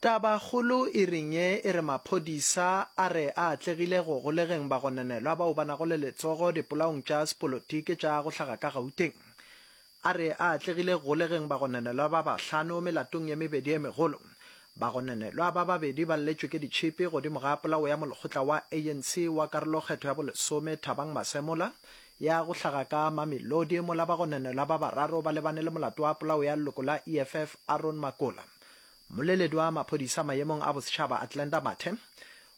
Tabakgolo e reng ye e re maphodisa a re a atlegile go golegeng bagononelwa bao ba nago le letsogo dipolaong tša sepolotiki tša go hlaga ka Gauteng. A re a atlegile go golegeng bagononelwa ba bahlano melatong ye mebedi ye megolo. Bagononelwa ba babedi ba lletšwe ke ditšhipi godimo ga polao ya molekgotla wa ANC wa karolokgetho ya bolesome Thabang Masemola ya go hlaga ka Mamelodi mola bagononelwa ba bararo ba lebane le molato wa polao ya leloko la EFF Aaron Makola. Mmoleledi wa maphodisa maemong a bosetšhaba Athlenda Mathe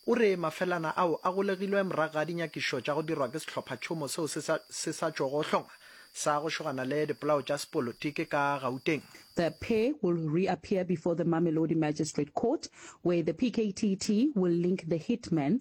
o re mafelana ao a golegilwe morago ga dinyakišo tša go dirwa ke sehlophatšhomo seo se sa, se sa tšogo hlongwa sa go šogana le dipolao tša sepolotiki ka Gauteng. The pair will reappear before the Mamelodi Magistrate Court, where the PKTT will link the hitman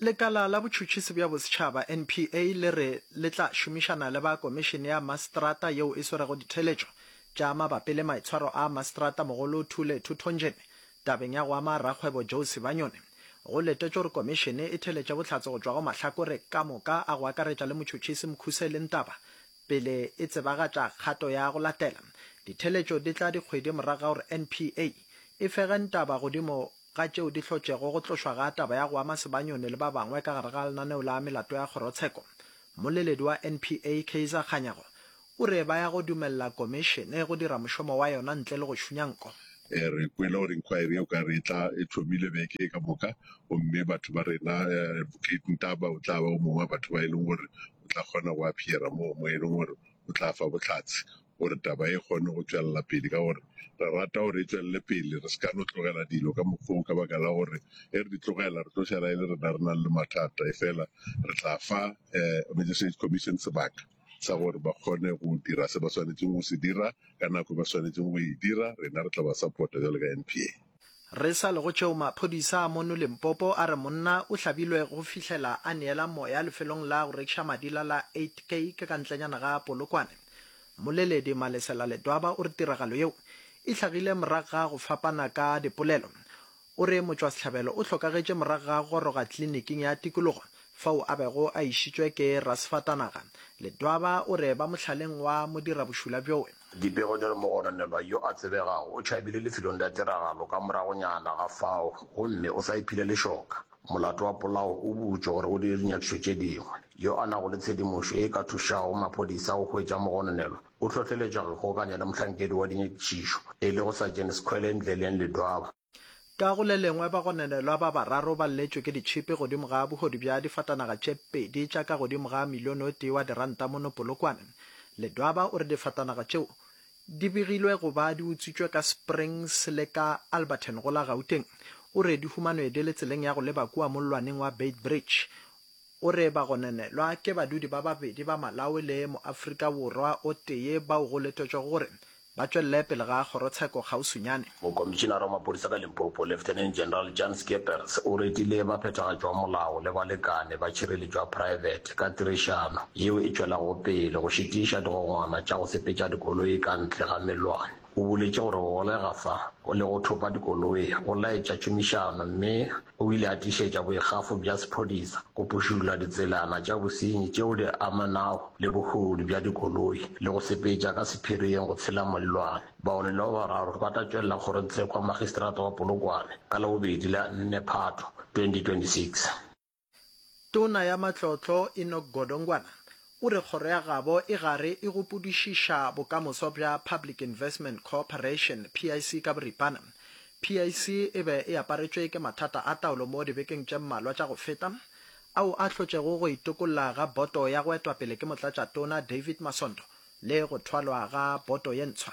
Lekala la Botšhotšhisi bja Bosetšhaba, NPA, le re le tla šomišana le ba Komišene ya Maseterata yeo e swerego ditheeletšo tša mabapi le maitshwaro a Maseterata-mogolo Thule Thuthonjene tabeng ya go ama rakgwebo Joe Sibanyoni. Go letetšwe gore Komišene e theeletše bohlatse go tšwa go mahlakore ka moka a go akaretša le motšhotšhisi Mkhuseli Ntaba pele e tsebagatša kgato ya go latela. Ditheeletšo di tla dikgwedi morago ga gore NPA e fege Ntaba godimo ga tšeo di hlotšego go tlošwa ga taba ya go ama Sebanyone le ba bangwe ka gare ga lenaneo la melato ya kgorotsheko, mmoleledi wa NPA, Kaizer Kganyago, o re ba ya go dumelela komišene go dira mošomo wa yona ntle le go šunya nko. Re kwele gore inquiry yeo ka re e thomile beke e ka moka, gomme batho ba rena, Advocate Ntaba o tla ba o mongwe wa batho ba e leng gore o tla kgona go appear-a moo, mo e leng gore o tla fa bohlatse. gore taba e kgone go tšwelela pele ka gore re rata gore e tšwelele pele re se ka no tlogela dilo ka mokgwa ka baka la gore e re di tlogela re tlo šala e le rena re nang le mathata e fela re tla fa um magistrate commission sebaka sa gore ba kgone go dira se ba swanetseng go se dira ka nako e ba swanetseng go e dira rena re tla ba support-a jalo ka N_P_A. Re sa le go tšeo maphodisa a mono Limpopo a re monna o hlabilwe go fihlela a neela moya lefelong la go rekiša madila la 8K ke ka ntlenyana ga Polokwane. Mmoleledi Malesela Ledwaba o re tiragalo yeo e hlagile morago ga go fapana ka dipolelo. O re motšwasehlabelo o hlokagetše morago ga go goroga tliliniking ya tikologo fao a bego a išitšwe ke rasefatanaga. Ledwaba o re ba mohlaleng wa modirabošula bjoe. Dipego di re mogononelwa yo a tsebegago o tšhabile lefelong la tiragalo ka moragonyana ga fao gomme o sa iphile lešoka. Molato wa polao o butšwe gore o dire dinyakišo tše dingwe. Yo a nago le tshedimošo ye e ka thušago maphodisa go hwetša mogononelwa o hlohleletšwa go ikgokanya le mohlankedi wa dinyakišišo e lego Sajene Skhwele Ndleleng Ledwaba. Ka go le lengwe, bagononelwa ba bararo ba lletšwe ke ditšhipi godimo ga bohodu bja difatanaga tše pedi tša ka godimo ga milione o tee wa diranta mono Polokwane. Ledwaba o re difatanaga tšeo di begilwe go ba di utswitšwe ka Springs le ka Alberton go la Gauteng. O re di humanwe di le tseleng ya go leba kua mollwaneng wa Beitbridge. O re bagononelwa ke badudi ba babedi ba Malawi le Moafrika Borwa o tee bao go letetšwego gore ba tšwelele pele ga kgorotsheko kgauswinyane. Mokomišinara wa Maphodisa ka Limpopo, Lieutenant General Jan Skeepers, o retile baphethagatši ba molao le balekane ba tšhireletšo ya praebete ka tirišano yeo e tšwelago pele go šitiša digongwana tša go sepetša dikoloi ka ntle ga melwane. O boletše gore go golega fa go lego thopa dikoloi go laetša tšhomišano mme O ile a tiišetša boikgafo bja sephodisa go pšhula ditselana tša bosenyi tšeo di amanago le bohodu bja dikoloi le go sepetša ka sephiring go tshela Mollwane. Baonelo ba bararo ba tla tšwelela kgorotsekwa Makgistrata wa Polokwane ka Labobedi la 4 Phatho 2026. Tona ya Matlotlo Enoch Godongwana O re kgoro ya gabo e gare e gopodišiša bokamoso bja Public Investment Cooperation, PIC ka boripana. PIC e be e aparetšwe ke mathata a taolo mo dibekeng tše mmalwa tša go feta, ao a hlotšego go itokolla ga boto ya go etwa pele ke Motlatšatona David Masondo le go thwalwa ga boto ye ntshwa.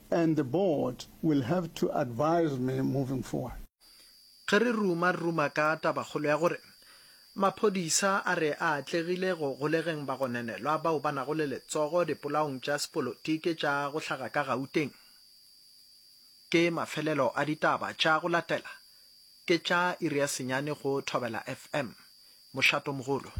and the board will have to advise me moving forward. Ge re ruma ruma ka tabakgolo ya gore maphodisa a re a atlegile go golegeng bagononelwa bao ba nago le letsogo dipolaong tša sepolotiki tša go hlaga ka Gauteng, ke mafelelo a ditaba tša go latela, ke tša iri ya senyane go Thobela FM. Mošatomogolo.